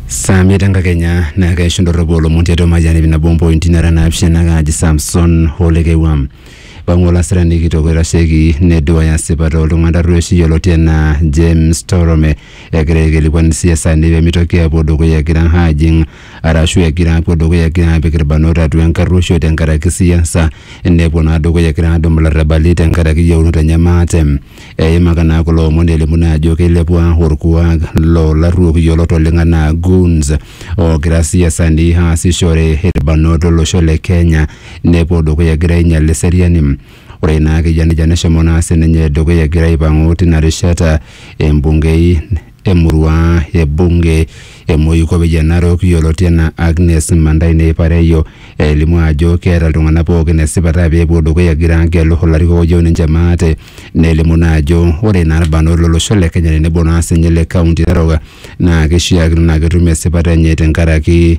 saa miet enkakenya naa keishu ndorropu olomon tiatua mayian ip nabo ompointi nara naapishana kaaji Samson Olekewam pang'u olasirani kitok oitasheki neduaya sipata oltung'ani tarrueshi yioloti enaa James Torome egira aikilikuan isiasani pemitoki apuo dukuya egira ajing arashu egira apuo dukuya egira apik irbanot atua enkarruoisho tenkaraki siasa nepuo naa dukuya egira adumu ilarrabali tenkaraki yieunot enye maate Eimaka naa kulo omon elimu naa ajo keilepua orkuak loo larruok yiolot oleng anaa goons oogira siasani aasishore irbanot lo losho le Kenya nepuo dukuya egira ainyal eseriani. Ore naa keyia nejia neshomo naa sininye dukuya egira aipang'u tina rishata embungei emurua e bunge e Moikope Jan Narok yioloti anaa Agnes Mandai Neipareyo elimu ajo keeta iltung'anak pookin esipata pee epuo dukuya egira agelu ilarikok oyieu ninche maate nelimu naa ajo ore naa irbanot lolosho le Kenya tenebo naa sinye ile kaunti e Narok naa kishiakino naa ketum esipata enye tenkaraki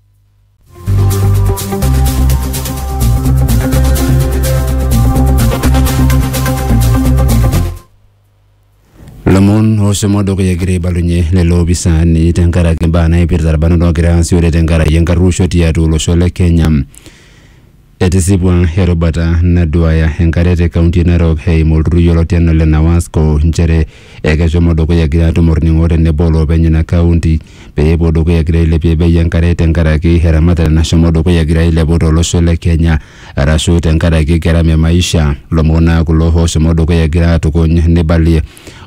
lomon oshomo dukuya egira aibalunye lelo opisaani tenkaraki imbaa naipirta irbanot oogira aasishore tenkaraki enkarruosho tiatua olosho le Kenya. Etisipua erubata naduaya enkare te kaunti e Narok eimu olturrur yioloti anaa ole NAWASCO nchere ekeshomo dukuya egira atum olning'o tenebo oloopeny ina kaunti pee epuo dukuya egira ailepie bei enkare tenkaraki eramatare nashomo dukuya egira ailepu to losho le Kenya arashu tenkaraki gharama e maisha. Lomon naa kulo ooshomo dukuya egira aatukuny neibalie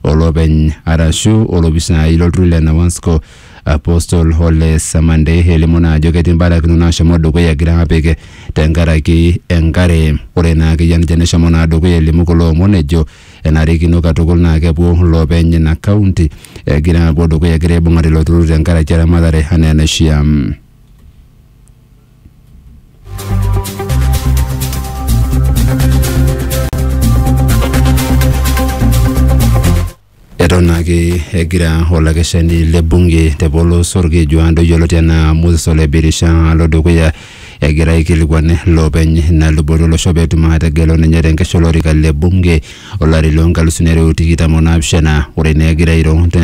olopeny arashu olopisaai lo lturrur le NAWASCO Apostle Hole Samande elimu naa ajo ketii mbarakinot naashomo dukuya egira apik tenkaraki enkare. Ore naa akeyie ninche neshomo naa dukuya elimu kulo omon ejo enarikino katukul naa kepuo loopeny ina county egira apuo dukuya egira aibung'are ilo turrur tenkaraki eramatare anaa enaishia. Eton ake egira olakeshani le bunge te polos olkeju Ando yioloti anaa Moses Ole Birisha alo dukuya egira aikilikuan loopeny ina luboto olosho pee etum aategelu ninye te nkesha olorika le bunge olari loo nkalusuni are o tikitam o naapishana. Ore naa egira airo te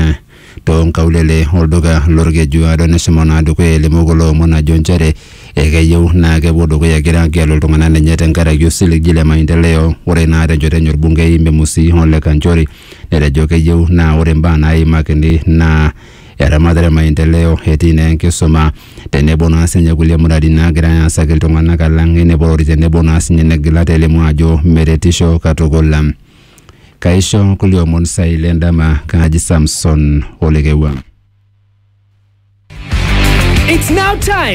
too nkaulele olduka lolkeju Ado neshomo naa dukuya elimu kulo omon ajo nchere Ekeyieu naa kepuo dukuya egira agelu iltung'ana lenye tenkaraki osiligi le maendeleo. Ore naa tenchoto enye olbungei Memusi Ole Kanchori netejo keyieu naa ore mbaa naaimakini naa eramatare maendeleo etii naa enkisuma tenebo naa sinye kulie muratin naagirai aasaki iltung'ana alang eneporori tenebo naa sinye negila telimu ajo meretisho katukul. Kaisho kulie omon saai le ndama kaji Samson Olekewua. It's now time.